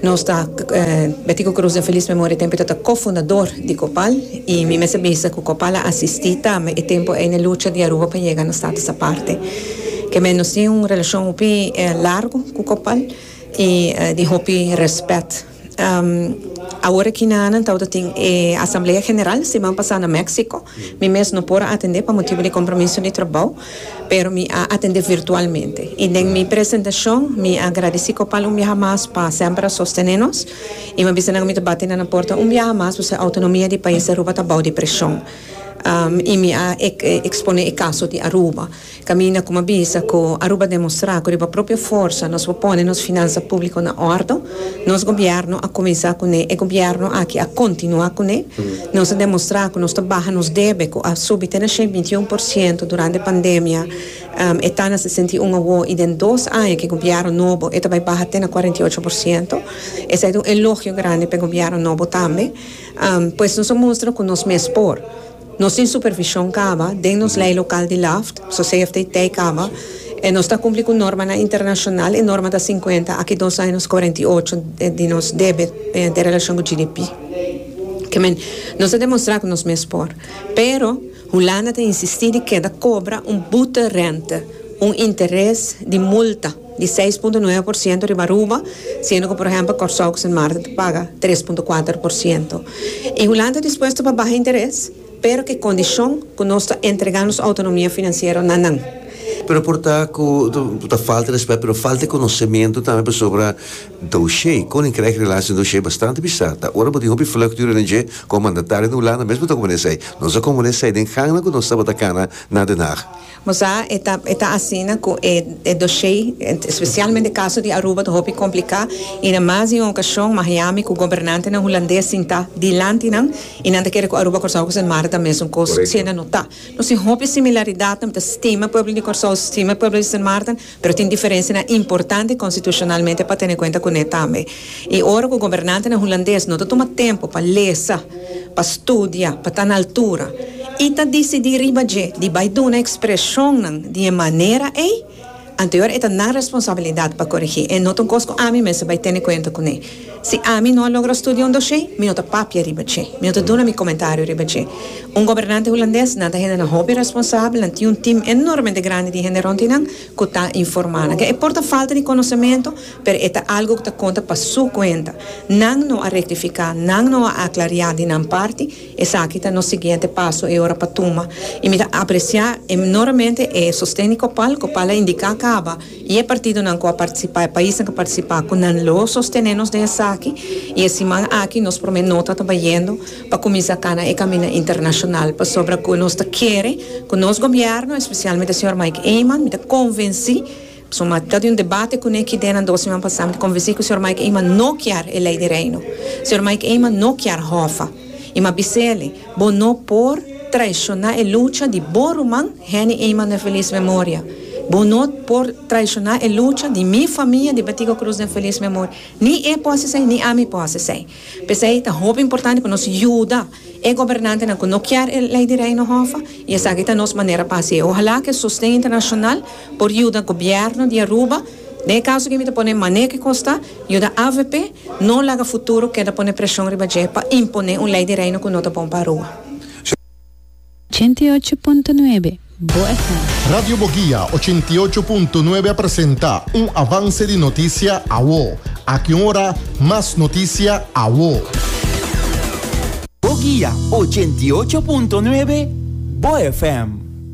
Nos ta Betty cu Cruz den feliz memoria tempo e ta ta co-fundador di Copal y mi mester bisa cu Copal a asisti tambe e tempo ey n'e lucha di Aruba pa yega na status aparte. Kemey nos tin un relacion hopi largo cu Copal y di hopi respet. Awor aki na nan tawata tin e asamblea general siman pasa na Mexico. Mi mes no por a atende pa motibo di compromiso di trabao. pero mi a atende virtualmente. I den mi presentacion mi a agradeci Copal un biaha mas pa semper a sostene nos i mi a bisa nan cu mi ta bati na nan porta un biaha mas pasobra autonomia di pais di Aruba ta bou di presion. I mi a expone e caso di Aruba caminda cu mi a bisa cu Aruba a demostra cu riba propio forsa nos por pone nos finansa publico na ordo. Nos Gobierno a cuminsa cu ne, e Gobierno aki a continua cu ne. Nos a demostra cu nos ta baha nos debe cu a subi te na shei binti un por ciento durante pandemia, e ta na sesenta i un awo y den dos aña cu e Gobierno nobo e ta bay baha te na cuarenta i ocho por ciento. Esey ta un elogio grandi pa e Gobierno nobo tambe. Pues nos a mustra cu nos mes por. Nos tin supervision caba den nos ley local di Laft, so CFTT caba e nos ta cumpli cu normanan internacional, e norma ta cincuenta aki dos años cuarenta y ocho di nos deber den relacion cu GDP. Ke men nos ta demostra cu nos mes por. Pero Hulanda ta insisti di keda cobra un boete rente, un interes di multa. di seis punto nuebe por siento riba Aruba, siendo cu por ehempel Corsou cu Sint Maarten ta paga tres punto kuater por siento. Y Hulanda ta dispuesto pa baha interes, pero cu e condicion cu nos ta entrega nos autonomia financiero na nan. Pero por ta cu ta falta respet, pero falta e conocemento tambe pasobra doshey, Koninkrijk Relaties en Doshey, bastante bizar ta. Ora bo tin hopi vlucht di René Jay como mandatario na Hulanda, mesmo ta como nesey. Nos a como nesey den gangnan cu nos tabata cana na Den Haag. Nos a e ta e ta asina ku e e doshé, espesialmente e kaso di Aruba ta hopi kompliká i na mas di un okashon Miami ku gobernantenan hulandes sintá dilanti nan i nan ta kere ku Aruba Kòrsou ku Sint Maarten ta mesun kos, siendo no ta. Nos tin hopi similaridatnan, mi ta stima pueblo di Kòrsou, stima pueblo di Sint Maarten. Pero tin diferensianan importante konstitushonalmente pa tene kuenta kuné tambe. I ora ku gobernantenan hulandes no ta tuma tempu pa lesa, pa studia, pa ta na altura i ta disidí riba dje di bai duna ekspreshonnan di e manera ei, anteor e ta nan responsabilidat pa korigí. E no ta un kos ku ami mester bai tene kuenta kuné. Si ami no a logra studia un doshe, mi no ta papia riba dje. Mi no ta duna mi komentario riba dje. Un gobernante hulandes, nan ta hendenan hopi responsabel, nan tin un tim enormemente grandi di hende rond di nan ku ta informá nan. Ke e por ta falta di konosementu, pero e ta algu ku ta konta pa su kuenta. Nan no a rektifiká, nan no a aklariá di nan parti, esaki ta nos siguiente paso e ora pa tuma. I mi ta apresiá enormemente e sosten di Copal. Copal a indiká caba. I e partidonan ku a partisipá, e paisnan ku a partisipá, ku nan lo sostené nos den esaki. I e siman aki nos promé nota ta bayendo pa kuminsá kana e kaminda internashonal pasobra ku nos ta kere ku nos gobièrnu, espesialmente señor Mike Eman, mi ta konvensí, pasobra mi a ta di un debate kuné ki den nan dos siman pasá, mi ta konvensí ku señor Mike Eman no kier e Lei di Reino. Señor Mike Eman no kier Hòfa. I mi a bis'é alí. Bo no por traishoná e lucha di bo ruman Henny Eyman den felis memoria. Bo no por traishoná e lucha di mi famia di Betico Cruz den felis memoria. Ni e por hasi esei, ni ami por hasi esei. P'esei ta hopi importante ku nos yuda e gobernantenan ku no kier e Lei di Reino Hòffa, i esaki ta nos manera pa hasi. Ohalá ku e sosten internashonal. Por yuda Gobierno di Aruba, den e caso aki mi ta pone mane cu Costa, yuda avp no laga futuro keda pone presion riba dje pa impone un ley di Reino cu no ta bon pa Aruba. Ochenta i ocho punto nuebe, Bo FM. Radio Boguia ochenta i ocho punto nuebe a presenta un avance di noticia awo. Aki un ora mas noticia awo. Boguia ochenta i ocho punto nuebe, Bo FM.